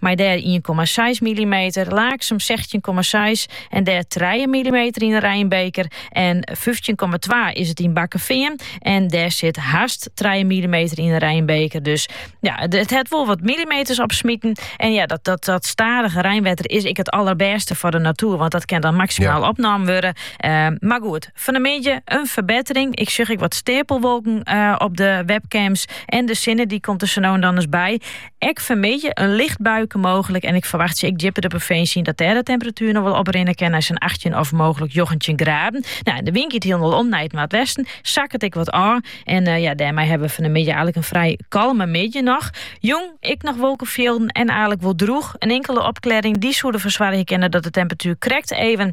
mei dêr ien komma seis millimeter, Laaksum sechstjin komma seis en dêr trije millimeter yn de reinbeker en fyftjin komma twa is it yn Bakkefean en dêr sit hast trije millimeter yn 'e reinbeker. Dus ja, it hat wol wat millimeters opsmiten en ja, dat, dat, dat stadige reinwetter is ek it allerbêste foar de natuer, want dat kin dan maksimaal opnaam wurde. Eh, maar goed, fan 'e middei in ferbettering. Ik sjoch ek wat steapelwolken eh, op de webcams en de sinne dy komt der sa no en dan ris by. Ek fanmiddei in licht buike mooglik en ik ferwachtsje ek djipper de provinsje yn dat dêr de temperatuer noch wol oprinne kin nei sa'n achttjin of mooglik njoggentjin graden. Nou, de wyn giet hielendal om nei it noardwesten, sakket ek wat ôf en ja, dêrmei hawwe we fanmiddei aardlik in frij kalme middei noch. Jûn ek noch wolkefjilden en aardlik wol drûch. In inkele opklearring dy soe derfoar soargje kinne dat de temperatuer krekt even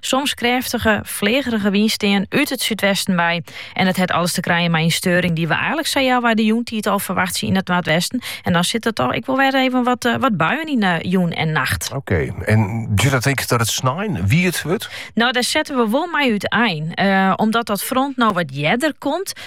Soms krêftige, flegerige wyn stean út it súdwesten wei. En dat het alles te krijen mei in steuring dy't we eigenlik sa tsjin de jûntiid al ferwachtsje yn it noordwesten. En dan sitte der toch ek wol wer even wat, eh, wat buien yn de jûn en nacht. Oké, en duorret dat ek dat it sneon wiet wurdt? Nou, dêr sette we wol mei útein. Eh, omdat dat front no wat earder komt,